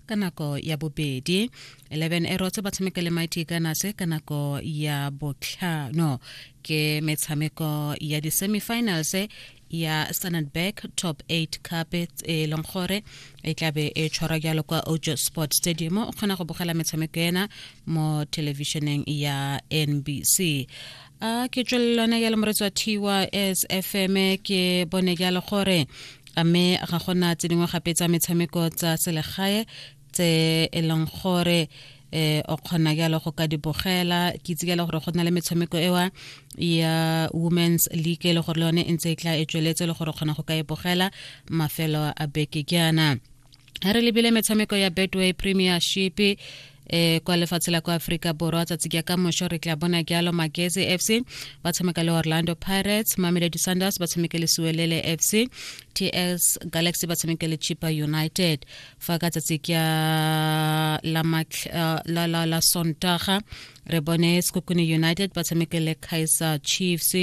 ka nako ya bobedi 11 erotse ba tshameka le mighty gunners ka nako ya botlhano ke metshameko ya di-semifinals ya standard bank top 8 cup e leng gore e tlabe e tshwarwa jalo kwa ojo sport stadium o kgona go bogela metshameko ena mo thelebišeneng ya nbc a ke tswelelone ya le moretsi wa thiwa sfm ke bone jalo gore a mme ga gona tse dingwe gape tsa metshameko tsa selegae tse e leng gore eh o kgona jalo go ka di bogela ke itse jalo gore go na le metshameko ewa ya women's league e le gore le yone e ntse e tla e tsweletse le gore kgona go ka e bogela mafelo a beke jaana ga re lebile metshameko ya betway premiership eh kwa lefatshe la kwa Afrika Borwa tsatsi ke ka mosho re tla bona jalo Magezi FC ba tshameka le Orlando Pirates Mamelodi Sundowns ba tshameka le Suwelele FC TS Galaxy ba tshameka le Chippa United fa ka tsatsi ke la eh, la la, la Sontaga re bone Sekokune United ba tshameka le Kaizer Chiefs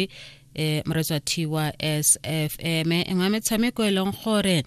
e moretswa thiwa sfm e nngwe ya metshameko e leng gore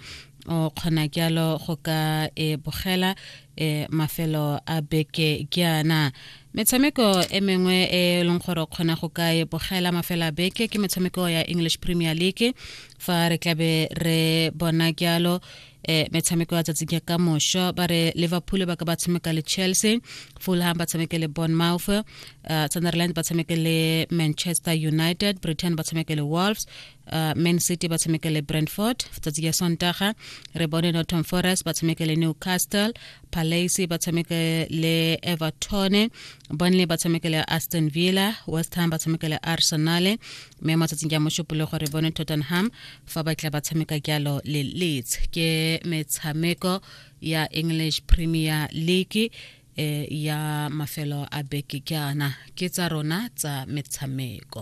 o kgona jalo go ka e bogela e mafelo a beke ke ana metshameko e mengwe e leng gore o kgona go ka e bogela mafelo a beke ke metshameko ya english premier league fa re tlabe re bona jalo eh metshameko ya tsatsi ke ka mosho ba re liverpool ba ka ba tshameka le chelsea fulham ba tshameke le bournemouth uh, sunderland ba tshameke le manchester united britain ba tshameke le wolves uh, man city ba tshameke le brentford tsatsi ya sontaga re bone norton forest ba tshameke le newcastle palace ba tshameke le everton burnley ba tshameke le aston villa west ham ba tshameke le arsenal mme mo tsatsing ya mošupolo gore bone tottenham fa ba tla ba tshameka jalo le leeds ke metshameko ya english premier league e ya mafelo a beke jaana ke tsa rona tsa metshameko